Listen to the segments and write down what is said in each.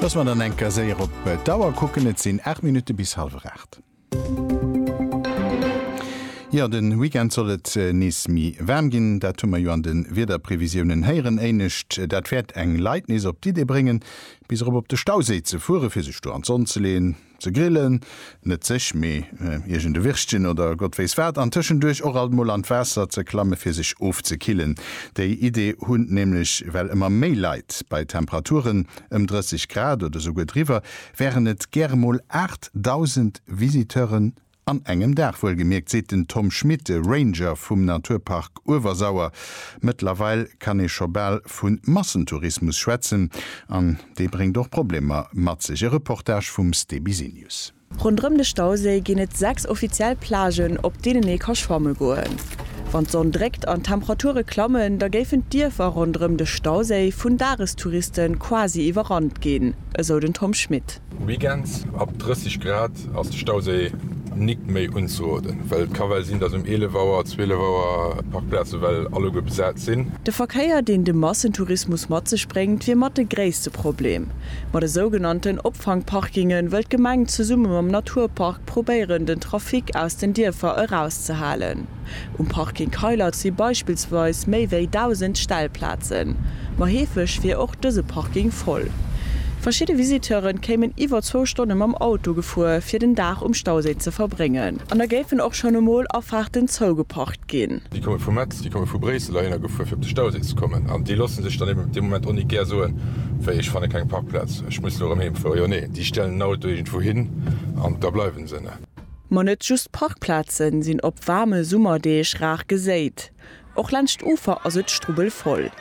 Dass mer dann enker séier op d'Auer kucken, et sinn 8 Minutte bis hallwer 8. Jo, de Weekend soll et nees méi waarm ginn, dat hu mer jo an de Wiederprevisiounen héieren. Éinescht, dat wäert eng Leit nees op d'Idee bréngen, bis erop op de Stauséi ze fueren, fir sech do an d'Sonn ze leeën. Ze grillen, net sech, mee iergend e Wirschchen oder Gott wéiss wat, an tëschenduerch och alt mol an d'Waasser ze klamme fir sech ofzekillen. Déi Idee hunn nämlech well ëmmer méi Leit. Bei Temperaturen ëm 30 Grad oder souguer driwwer wären et gäre mol 8.000 Visiteuren An engem Dag wuelgemierkt, seet den Tom Schmit, Ranger vum Naturpark Uewersauer. Mëttlerweil kann ee scho bal vu Massentourismus schwätzen. An dee bréngt och Problemer mat sech. E Reportage vum Ste Bisenius. Ronderëm de Stauséi ginn et sechs offiziell Plagen, op deenen ee ka schwamme goen. Wann d'Sonn dréckt an d'Temperature klammen, da géifen d'Dierfer ronderëm de Stauséi vun Dagestouriste quasi iwwerrannt ginn, esou den Tom Schmit. Weekends ab 30 Grad ass de Stauséi nik méi unzeroden, well et ka well sinn, dass um 11 Auer, 12 Auer d'Parkplaze well alleguer besat sinn. De Verkéier, deen de Massentourismus mat sech bréngt, wier mat de gréisste Problem. Ma de sougenannten Opfangparkinge wëll d'Gemeng zesumme mam Naturpark probéieren, den Trafic aus den Dierfer erauszehalen. Um Parking Keilert si beispillsweis méi wéi 1.000 Stellplazen, ma heefeg wier och dëse Parking voll. Verschidde Visiteure kéimen iwwer zwou Stonne mam Auto gefuer, fir den Dag um Stauséi ze verbréngen. An da géifen och schonn emol Afaarten zougeparkt ginn. Déi komme vu Metz, déi komme vu Bréissel heihinner gefuer, fir op de Stauséi ze kommen. An déi loosse sech dann eben op deem Moment och net gär soen, wéi, ech fanne keng Parkplaz, ech muss elo erëm heemfueren. Jo, nee, déi stellen den Auto iergendwou hin an da bleiwe se. Ma net just Parkplaze sinn op waarme Summerdeeg rar geséit. Och laanscht d'Ufer ass et strubbelvoll.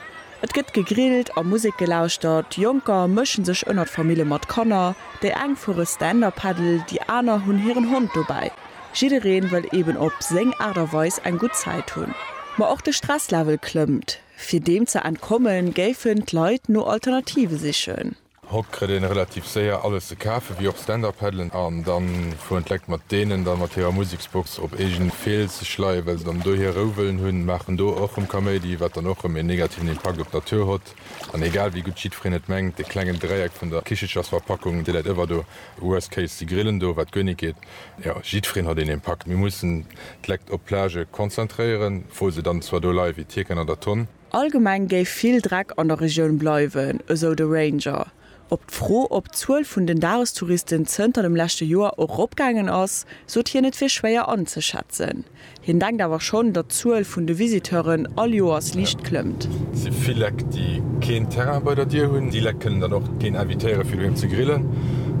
Et gëtt gegrillt a Musek gelauschtert. Jonker mësche sech ënner d'Famille mat Kanner. Déi eng fuere Stand-Up-Paddle, déi aner hunn hiren Hond dobäi. Jidderee wëll eben op seng Aart a Weis eng gutt Zäit hunn. Ma och de Stresslevel klëmmt. Fir deem ze entkommen, géifen d'Leit no Alternative sichen. Hott krëtt een relativ séier alles ze kafen, wéi och Stand-Up-Paddelen, an dann fueren d'Lekt mat deenen dann mat hirer Museksbox op eegen Fels sech leien, well se dann do hier Rou wëllen hunn, maachen do och rëm Kaméidi, wat dann och rëm een negativen Impakt op d'Natur hott, an egal wéi gutt jiddfereen et mengt, dee klengen Dräieck vun der Kichelchersverpackung, dee läit ëwer do, worst case, si grillen do, wat guer nit geet, jo, jiddfereen hott een Impakt. Mir mussen d'Lekt op d'Plage konzentréieren, wou se dann zwar do leie wéi d'Hierken an der Tonn. Allgemeng géif vill Dreck an der Regioun bleiwen, esou de Ranger. Op d'Fro, ob d'Zuel vun den Dagestouristen zënter dem leschte Joer och eropgaangen ass, sot hien et wier schwéier anzeschätzen. Hien denkt awer schonn, datt d'Zuel vun de Visiteuren all Joers liicht klëmmt. Et si vill Leck, déi keen Terrain bei der Dier hunn. Déi Leck kënnen dann och keen invitéiere fir doheem ze grillen.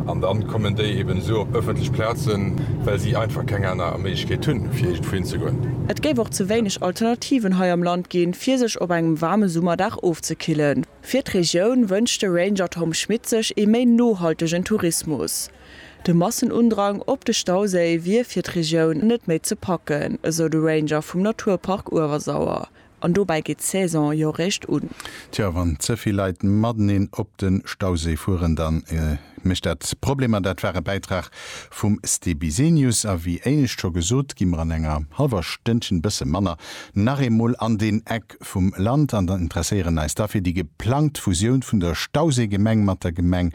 An dann kommen déi eben esou op ëffentlech Plazen, well si einfach keng aner Méiglechkeet hunn, fir iergendwou hinzegoen. Et géif och ze wéineg Alternativen hei am Land. ginn, fir sech op engem waarme Summerdag ofzekillen. Fir d'Regioun wënscht de Ranger Tom Schmit sech ee méi nohaltegen Tourismus. De Massenundrang op de Stauséi wier fir d'Regioun net méi ze packen, esou de Ranger vum Naturpark Uewersauer. An dobäi geet d'Saison jo réischt un. Tjo, wann ze vill Leit mateneen op de Stauséi fueren, da mécht dat Problemer. Dat war e Bäitrag Vum Ste Bisenius, a wéi éinescht scho gesot, gi mer an enger hallwer Stënnchen, bësse manner, nach eemol an deen Eck vum Land an interesséieren eis da fir déi geplangt Fusioun vun der Stauséigemeng mat der Gemeng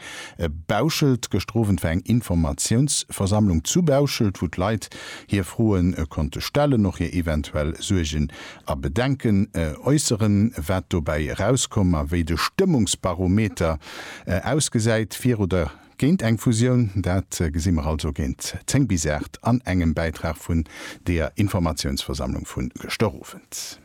Bauschelt. Gëschter Owend war eng Informatiounsversammlung zu Bauschelt, wou d'Leit hir Froe konnte stellen, och hir eventuell Suergen a Bedenken äusseren, wat dobäi erauskoum a wéi de Stëmmungsbarometer ausgesäit fir oder Géint eng Fusioun, dat gesi mer also géint 10 bis 8 an engem Bäitrag vun deeër Informatiounsversammlung vu gëschter Owend.